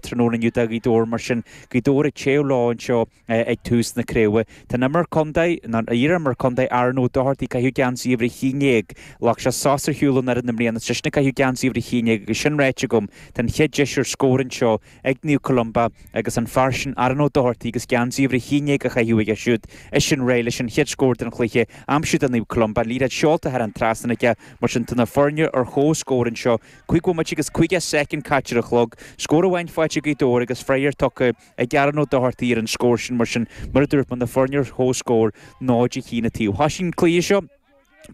tráthnóna inniu do Ghaoth Dobhair mar sin Gaoth Dobhair ag téamh leo anseo ag tús na craoibhe. Tá an imreoir contae, nó an iar-imreoir contae, Aaron Ó Dochartaigh, ag caitheamh geansaí uimhir a haon déag, ghlac sé sos ar shiúl ón fhoireann i mbliana, eisean ag caitheamh geansaí uimhir a haon déag. Agus sin ráite agam, tá an chéad deis ar scór anseo ag Naomh Columba agus an fear sin Aaron Ó Dochartaigh agus geansaí uimhir a haon déag á chaitheamh aige siúd, eisean réidh leis an chéad scór den chluiche a aimsiú do Naomh Columba. Liathróid seolta thar an trasnán aige mar sin tá na foirne ar chomhscór anseo Cúig bhomaite agus caoga soicind caite ar an chlog, scór amháin faighte ag Gaoth Dobhair agus freagra tugtha ag Aaron Ó Dochartaigh ar an scór sin mar sin mar a dúirt mé na foirne ar chomhscór, 0, 1 an taobh. Thosaigh an cluiche seo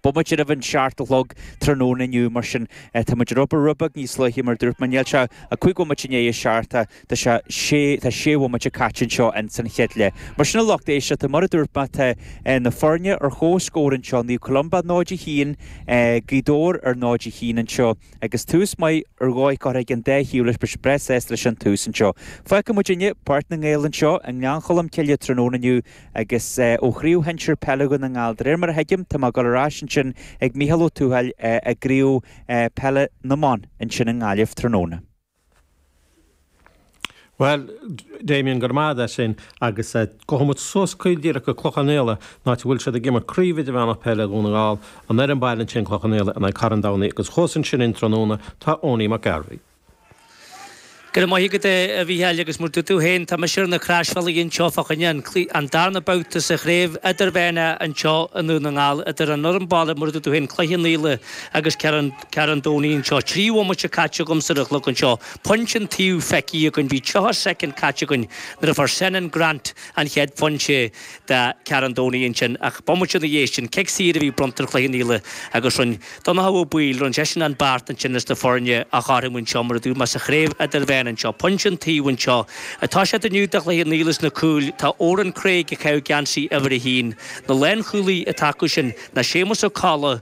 bomaite roimh an seacht a chlog tráthnóna inniu mar sin táimid ar obair rud beag níos luaithe mar a dúirt mé níl sé ach cúig bhomaite i ndiaidh a seacht a Tá sé, sé, tá sé bhomaite caite anseo ins an chéad leath. Mar sin a lucht éisteachta, mar a dúirt mé tá na foirne ar chomhscór anseo, Naomh Columba 0, 1, Gaoth Dobhair ar 0, 1 anseo agus tús maith ar dhóigh curtha ag an dá thaobh leis beirt breá sásta leis an tús anseo. Fágfaidh muid inniu Páirc na nGael anseo i nGleann Cholm Cille tráthnóna inniu agus ó chraobh shinsir peile Dhún na nGall. De réir mar a thuigim tá mé ag dul ar ais ansin ag Micheál Ó Tuathail i gcraobh peile na mban ansin i nGaillimh tráthnóna. Bhuel, Damien, go raibh maith agat as sin agus gabhfaimid suas caol díreach go Cloich Cheann Fhaola, áit a bhfuil siad ag imirt Craobh Idirmheánach Peile Dhún na nGall, an fhoireann baile ansin, Cloich Cheann Fhaola, in aghaidh Carn Domhnaigh agus thuas ansin dúinn tráthnóna tá Eoiní Mac Gairbheith. Go raibh maith agat, a Mhícheáil, agus mar a dúirt tú féin, tá mise ar na Croisbhealaí anseo fá choinne an darna babhta sa Chraobh Idirmheánach anseo i nDún na nGall idir an fhoireann baile, mar a dúirt tú féin, Cloich Cheann Fhaola agus Carn Carn Domhnaigh anseo. Trí bhomaite caite agamsa ar an chlog anseo. Pointe an taobh feicthe againn. Bhí 30 soicind caite againn nuair a fuair Senan Grant an chéad phointe do Charn Domhnaigh ansin. Ach bomaite ina dhiaidh sin, cic saor a bhí bronnta ar Chloich Cheann Fhaola agus rinne Donnchadh Ó Baoill, rinne seisean an beart ansin leis na foirne a chothromú anseo mar a dúirt mé sa Chraobh Idirmheánach anseo. Pointe an taobh anseo atá siad inniu do Chloich Cheann Fhaola sna cúil tá Oran Craig ag caitheamh geansaí uimhir a haon, na lánchúlaí atá acu sin ná Séamus Ó Colla,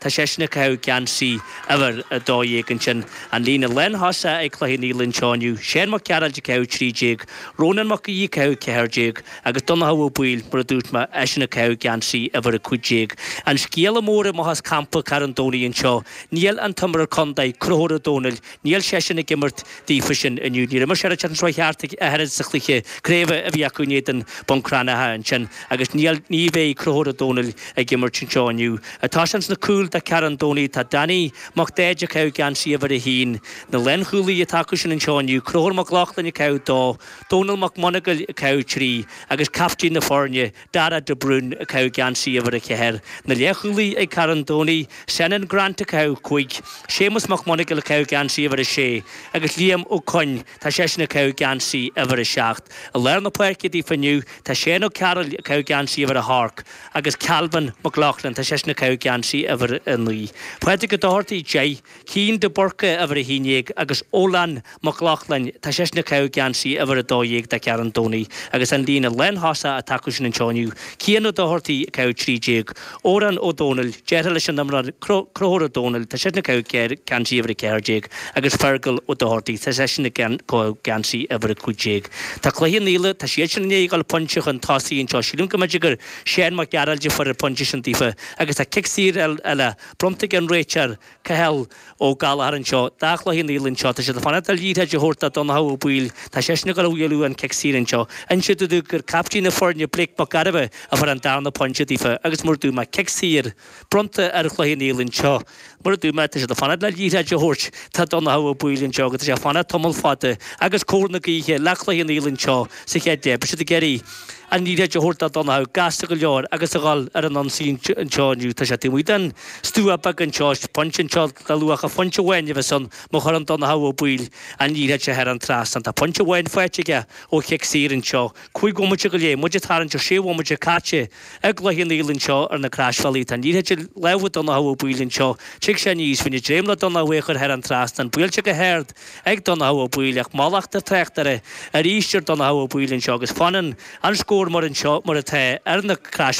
Tá seisean ag caitheamh geansaí uimhir a dó dhéag ansin. An líne lántosaigh ag Cloich Cheann Fhaola anseo inniu, Seán Mac Gearailt ag caitheamh trí déag, Rónán Mac Aoidh ag caitheamh ceathair déag agus Donnchadh Ó Baoill, mar a dúirt mé, eisean ag caitheamh geansaí uimhir a cúig déag. An scéala mór amach as campa Carn Domhnaigh anseo, níl an t-imreoir contae, Conchúr Ó Domhnaill, Níl seisean ag imirt daofa sin inniu. Níor imir sé an tseachtain seo chuaigh thart ach a oiread sa chluiche craoibhe a bhí acu in éadan Bun Cranncha ansin agus ní bheidh Conchúr Ó Domhnaill ag imirt anseo inniu. Tá ins na cúil do Charn Domhnaigh tá Danny Mac Daid ag caitheamh geansaí uimhir a haon na lánchúlaí atá acu sin anseo inniu, Conchúr Mac Lochlainn ag caitheamh dó, Dónal Mac Monagail ag caitheamh trí agus caiftín na foirne, Darragh de Brún ag caitheamh geansaí uimhir a ceathair, na leathchúlaí ag Carn Domhnaigh, Senan Grant ag caitheamh cúig, Séamus Mac Monagail ag caitheamh geansaí uimhir a sé agus Liam Ó Cuinn tá seisean ag caitheamh geansaí uimhir a seacht. I lár na páirce daofa inniu tá Séan Ó Cearúill ag caitheamh geansaí uimhir a hocht agus Calvin Mac Lochlainn tá seisean ag caitheamh geansaí uimhir a naoi. Pádraig Ó Dochartaigh deich. Cian de Búrca uimhir a haon déag agus Odhlán Mac Lochlainn, tá seisean ag caitheamh geansaí uimhir a dó dhéag do Charn Domhnaigh agus an líne lántosaigh atá acusan anseo inniu, Cian Ó Dochartaigh ag caitheamh trí déag, Odhrán Ó Domhnaill, deartháir leis an imreoir Conchúr Ó Domhnaill, tá seisean ag caitheamh geansaí uimhir a ceathair déag agus Fergal Ó Dochartaigh, tá seisean ag caitheamh geansaí uimhir a cúig déag. Tá Cloich Cheann Fhaola, tá siadsean i ndiaidh a ghabháil pointe chun tosaigh anseo, sílim go mb'fhéidir gur Séan Mac Gearailt a fuair an pointe sin daofa agus tá cic saor eile bronnta ag an réiteoir, Cathal Ó Gallchóir anseo do Chloich Cheann Fhaola anseo. Tá siad ag fanacht le liathróid a thabhairt do Dhonnchadh Ó Baoill. Tá seisean ag gabháil a bhualadh an cic saor anseo. Insíodh dom gur caiptín na foirne Blake Mac Gairbheith a fuair an darna pointe daofa agus mar a dúirt mé cic saor bronnta ar Chloich Cheann Fhaola anseo. Mar a dúirt mé, tá siad ag fanacht le liathróid a thabhairt do Dhonnchadh Ó Baoill anseo agus tá sé ag fanacht tamall fada agus cóir na gaoithe le Cloich Cheann Fhaola anseo sa chéad leath. Beidh siad ag iarraidh. an liathróid a thabhairt do Dhonnchadh gasta go leor agus a dhul ar an ionsaí anseo inniu. Tá sé taobh amuigh den stua beag anseo, is pointe anseo le luach pointe amháin a bheas ann má chuireann Donnchadh Ó Baoill an liathróid seo thar an trasnán. Tá pointe amháin faighte aige ó chic saor anseo. Cúig bhomaite go leith, muid ag tarraingt ar sé bhomaite caite i gCloich Cheann Fhaola anseo ar na Croisbhealaí. Tá an liathróid i lámha Donnchadh Ó Baoill anseo, tig sé aníos faoina dréim le Donnchadh é a chur thar an trasnán, buailte go hard, ag Donnchadh Ó Baoill ach mallacht an tráchtaire arís ar Dhonnchadh Ó Baoill anseo agus fanann an scór mar anseo mar atá ar na.